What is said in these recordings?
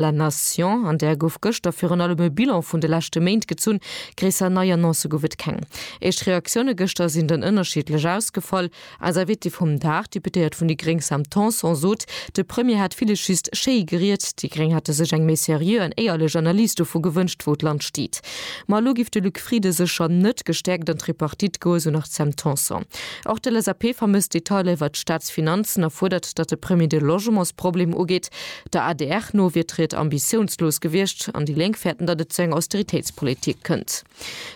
La Nation, an där gouf gëschter virun allem e Bilan vun de leschte Méint gezunn. Gréisser nei Annoncë gouf et keng. Éischt Reaktioune gëschter sinn dann ënnerschiddlech ausgefall. Eis Invitée vum Dag, d'Deputéiert vun déi gréng Sam Tanson sot, de Premier hätt villes just schéi geriet. Déi gréng hätte sech eng méi seriö an éierlech Analys dovu gewënscht, wou d'Land steet. Ma elo géif de Luc Frieden sécher net gestäerkt an d'Tripartite goen, esou nach d'Sam Tanson. Och d'LSAP vermësst Detailer iwwert d'Staatsfinanzen a fuerdert, datt de Premier de Logementsproblem ugeet. Der adr no wier d'Ried ambitiounslos gewiescht an déi Lénk fäerten, datt et zu enger Austeritéitspolitik kënnt.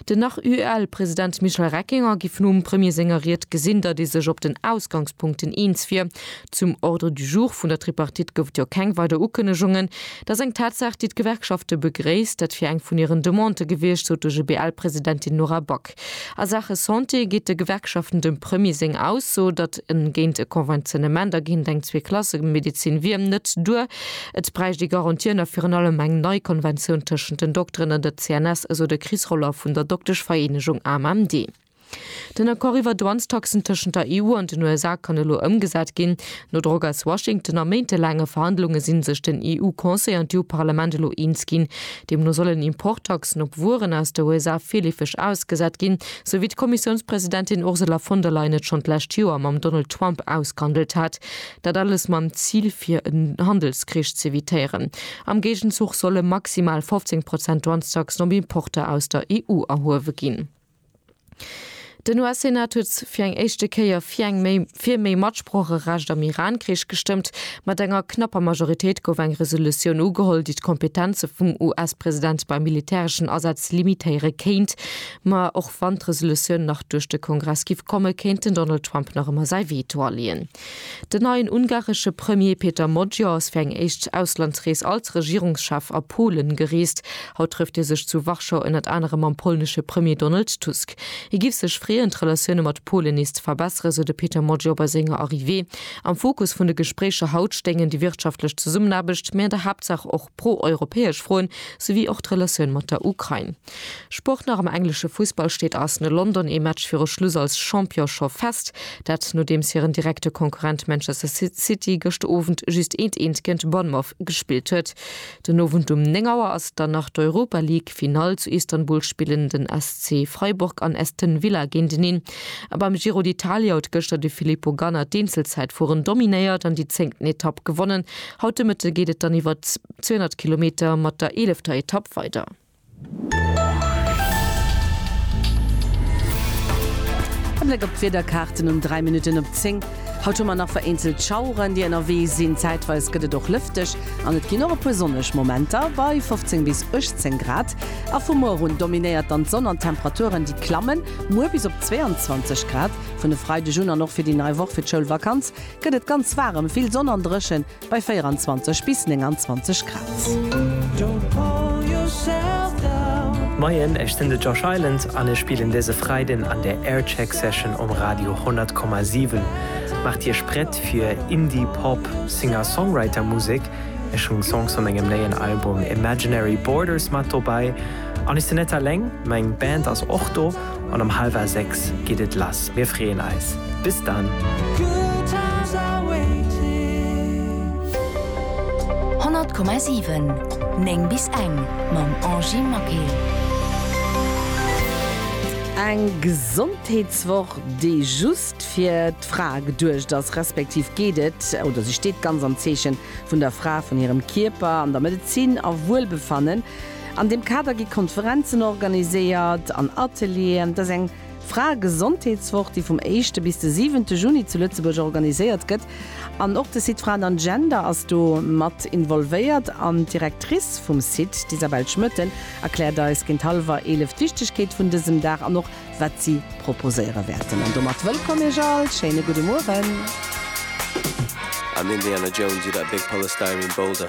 Den Nach-UEL-President Michel Reckinger géif nom Premier senger Ried gesinn, datt ee sech op den Ausgangspunkten eens wier. Zum Ordre du jour vun der Tripartite gouf et jo keng weider Ukënnegungen. Dat ass eng Tatsaach, déi d'Gewerkschafte begréisst. Dat wier eng vun hiren Demandë gewiescht, sot de GBL-Presidentin Nora Back. A Saache Santé geet de Gewerkschaften dem Premier seng Ausso, datt en géint e Konventionnement a géint eng Zweeklassemedezin wier, net duer. Et bräicht ee Garantien a virun allem eng nei Konventioun tëschent den Dokteren an der CNS, esou de Chris Roller vun der Dokteschvereenegung AMMD. Den Accord iwwer Douanestaxen tëschent der EU an den USA kann elo ëmgesat ginn. No Drock aus Washington a méintelaange Verhandlunge si sech den EU-Conseil an d'EU-Parlament elo eens ginn, Deemno sollen Importtaxen op Wueren aus de USA virleefeg ausgesat ginn, sou wéi d'Kommissiounspresidentin Ursula von der Leyen et schonn d'lescht Joer mam Donald Trump ausgehandelt hat. Dat alles mam Zil, fir en Handelskrich z'evitéieren. Am Géigenzuch solle maximal 15 Prozent Douanestaxen op Importer aus der EU erhuewe ginn. Den US-Senat huet fir eng éischte Kéier fir eng méi fir méi Matsprocherecht am Iran-Krich gestëmmt. Mat enger knapper Majoritéit gouf eng Resolutioun ugeholl, déi d'Kompetenze vum US-President bei militäreschen Asätz limitéiere kéint. Ma och wann d'Resolutioun nach duerch de Kongress giff komme, kéint den Donald Trump nach ëmmer säi Veto aleeën. Den neien ungaresche Premier Péter Magyar ass fir eng éischt Auslandsrees als Regierungschef a Polen gereest. Haut trëfft hie sech zu Warschau ënnert anerem mam polnesche Premier Donald Tusk. Hie giff sech freeën, d'Relatioune mat Polen nees ze verbesseren, sou de Péter Magyar bei senger Arrivée. Am Fokus vun de Gespréicher haut stéingen déi wirtschaftlech Zesummenaarbecht, mee an der Haaptsaach och. pro-europäesch Froen, souwéi och d'Relatioun mat der Ukrain. Sport nach am englesche Fussball steet Arsenal London ee Match viru Schluss als Champion scho fest. Dat nodeems hiren direkte Konkurrent Manchester City gëscht Owend just eent eent géint Bournemouth gespillt huet. Den Owend um 9 Auer ass dann nach d'Europa League Finall. Zu Istanbul spillen den SC Freiburg an Aston Villa géinteneen. A beim Giro d'Italia huet gëschter de Filippo Ganna d'Eenzelzäitfueren dominéiert an déi zéngten Etapp gewonnen. Haut de Mëtte geet et dann iwwer 200 Kilometer mat der eelefter Etapp weider. E Bléck op d'Wiederkaarten um 3 Minutten op 10. Haut hu mer nach vereenzelt Schaueren, déi ënnerwee sinn. Zäitweis gëtt et och lëfteg an et ginn och e puer sonneg Momenter bei 15 bis 18 Grad. A vu muer un dominéiert dann d'Sonn an d'Temperaturen, déi klammen muer bis op 22 Grad. Vun e Freideg un an och fir déi nei Woch, fir d'Schoulvakanz, gëtt et ganz waarem, vill Sonn an dréchen bei 24 bis 29 Grad. Moien, ech sinn de Josh Island an ech spillen dëse Freiden an der Aircheck Session um Radio 100,7. Maacht Iech prett fir Indie Pop Singer-Songwriter Musek. Ech hunn Songs vu mengem néien Album Imaginary Borders mat dobäi. An ech sinn net alleng, meng Band ass och do. An um halwer 6 geet et lass. Mir freeën eis. Bis dann! Eng Gesondheetswoch, déi just fir d'Fra geduecht ass, respektiv geet et, oder si steet ganz am Zeechen vun der Fra, vun hirem Kierper, an der Medezin a Wuelbefannen. An deem Kader gi Konferenzen organiséiert an Atelieren. Et ass eng Fraegesondheetswoch, déi vum éischte bis de siwente Juni zu Lëtzebuerg organiséiert gëtt. An och de Site Fraen an Gender ass do mat involvéiert. An d'Directrice vum Site, d'Isabelle Schmoetten, erkläert eis géint hallwer eelef d'Wichtegkeet vun dësem Dag an och wat si proposéiere wäerten. An domat wëllkomm iech all, schéine gudde Mueren. Am Indiana Jones oder a Big Polystyrene Boulder?